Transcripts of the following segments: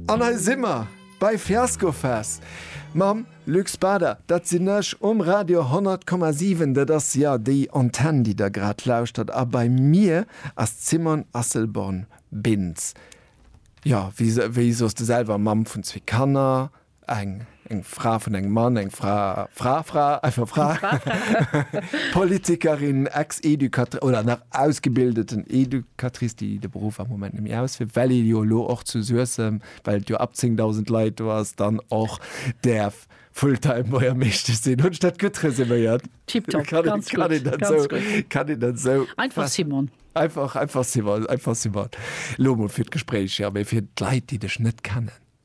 An hei si mer bei Fiascofest mam Luc Bader. Dat sinn ech um Radio 100,7. Dat ass jo déi Antenn, déi Der grad lauschtert. A bei mir ass d'Simone Asselborn-Bintz. Jo, wéi soss de selwer? Mamm vun zwee Kanner. Eng, eng Fra vun engem Mann, eng Fra, Fra, Fra, einfach Fra, Politikerin, Ex-Educatrice oder nach ausgebildeten Educatrice, déi de Beruff am Moment net méi ausféiert, well ee jo elo och zu Suessem, well et jo ab 10.000 Leit do ass, dann och däerf Full-time Buergermeeschtesch sinn. Hunn ech dat gutt resuméiert? Tipptopp, ganz gutt, ganz gutt. Kann een dat esou? Einfach Simon. Einfach, einfach Simon, einfach Simon. Elo emol fir d'Gespréich, ja, mee fir d'Leit, déi dech net kennen.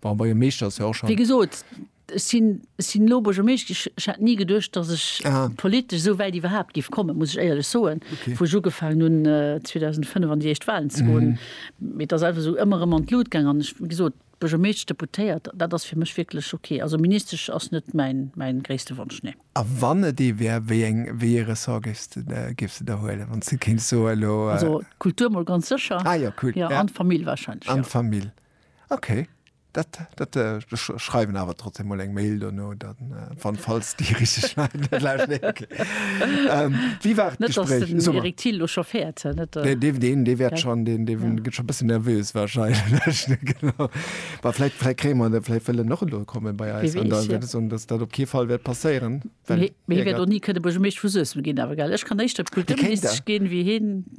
Bon, bei e Meeschter ass jo och Wéi schonn. gesot, ech sinn, ech sinn elo Buergermeescht gi. Ech hat ni geduecht, datt ech Aha. politesch esou wäit iwwerhaapt giff kommen, muss ech éierlech soen, Okay. wou ech ugefaangen hunn, 2005 an déi éischt Wahlen ze goen. Mee et ass einfach esou ëmmer erëm an d'Lut gaangen. An ech, wéi gesot, Buergermeesch, Deputéiert, dat ass fir mech wierklech okay. Also Ministesch ass net mäin, mäin gréisste Wonsch, nee. A wann et ee wär, wéi eng, wéi ee Ressort géifs de, de, géifs de der huelen, wann s de kéints soen elo? Also d'Kultur mol ganz sécher. Ah jo, cool, ja. ja. An d'Famill wahrscheinlech, An ja. d'Famill. Okay. Dat, dat, äh, schreiwen awer trotzdem mal eng Mail dono, dann äh, wann falls die richtig schneiden. okay. ähm, wie war das Gespräch? Den so, Erik Thiel schon fährt. Äh, nicht, äh, den, den, den wird schon, den, den ja. geht schon ein bisschen nervös wahrscheinlich. genau. Aber vielleicht, vielleicht kriegen wir, vielleicht will er noch kommen bei uns. Und dann wird es, und das, das auf keinen Fall wird passieren. Mir wird auch nie können, aber ich möchte für Süß gehen, aber geil. Ich kann nicht, das Kultur gehen wie hin.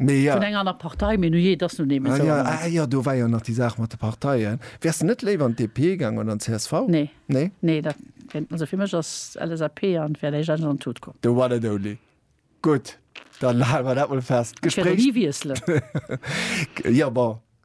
Vun enger aner Partei, mee nujee, et ass nun eemol esou. Ah jo, do war jo nach déi Saach mat de Parteien. Wäers de net léiwer an d'DP gaangen oder an d'CSV? Nee. Nee? Nee, dat, also fir mech ass LSAP an d'Fair Léich eigentlech an d'Tut komm. The one and only. Gutt, dann hale mer dat mol fest. Ech wäert och ni wiesselen. Jo, bon.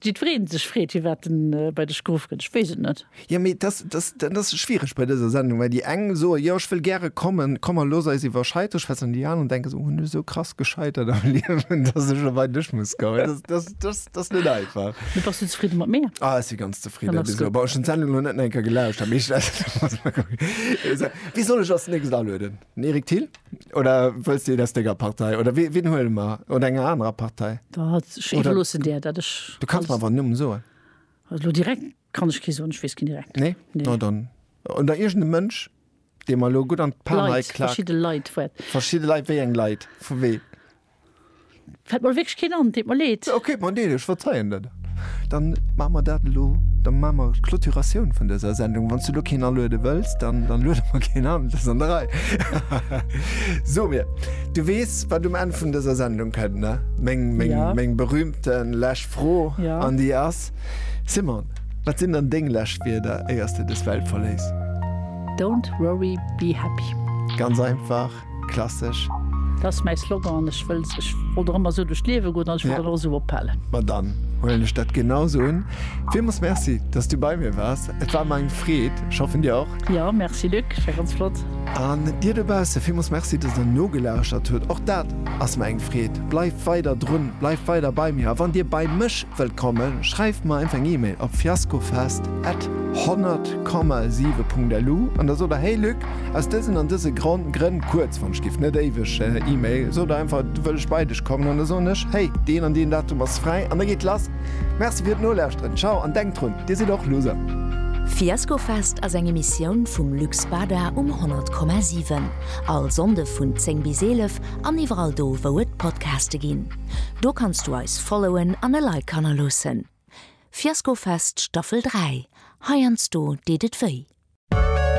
Jiddwereen sech freet, fir wat en bei dech geruff gëtt, ech weess et net. Jo, mee dat ass schwiereg bei dëser Sendung, well déi eng soe jo, ech wëll gäre kommen, komm mer looss eis iwwer Scheitert schwätzen, an déi aner denken sech, oh, hunn ech esou krass gescheitert am Liewen, datt ech elo bei dech muss kommen. Dat ass net einfach. Mee bass du zefridde mat mir? Ah, ech si ganz zefridde bis elo. Bon, ech hunn d'Sendung elo net nach eng Kéier gelauscht, dat meescht ass, wéi soll ech als nächst alueden? Eric Thill oder wëlls de et aus denger Partei oder wee, wien huele mer? Oder enger anerer Partei? Da hat ech Oder- iwwerloossen dir, dat ech. Du kanns mer awer en Numm soen. Also lo direkt kann ech kee soen, ech weess keen direkt. Nee? Nee. No dann. Oder iergende Mënsch, dee mer lo gutt an d'Pan Leit, heiklaakt. verschidde Leit, wat. Verschidde Leit, wéi eng Leit? Vu wee? Fällt mer wierklech keen an, deet mer leed. Ok, et mer leed, ech verzeien der dat. Dann maache mer dat elo, da maache mer d'Clôturatioun vun dëser Sendung. Wann s du elo keen aluede wëlls, dann luede mer keen an, et ass an der Rei. So mir, du weess, wat um Enn vun dëser Sendung kënnt, ne? Meng, meng, meng berühmte lescht Fro an déi ass, Simone, wat sinn dann deng lescht Wierder, éier s de dës Welt verléiss? Don't worry, be happy. Ganz einfach. Klassech. Dat ass mäi Slogan an ech wëll, ech wollt och ëmmer esou duerch d'Liewe goen an ech wëll dat och esou ophalen. Ma dann huelen ech dat genau esou un. Villmools Merci, dass du bei mir waars. Et war mer eng Freed. Ech hoffen dir och. Jo, Merci Luc, et war ganz flott. An dir dobausse, villmools Merci, dass der nogelauschert hutt. Och dat ass mer eng Freed. Bleift weider drun, bleift weider bei mir. A wann dir bei mech wëllt kommen, schreift mer einfach eng Email op fiaskofest at 100,7.lu an da sot der, Hey Luc, Aus dësen an dëse Gronn, Grënn, kuerz, wann ech giff net éiweg E-Mail, sot der einfach, et, wëll ech bei dech kommen an da soen ech, hey, deen an deen Datum ass fräi an da geet lass. Merci fir d'Nolauschteren, ciao an denkt drun, dir sidd och Loser. Fiaskofest ass eng Emissioun vum Lux Bada um 100,7. All Sonnde vun 10 bis 11 an iwwerall do wou et Podcaste ginn. Do kanns du eis followen an e Like hannerloossen. Fiaskofest Staffel 3, heiansdo deet et wéi.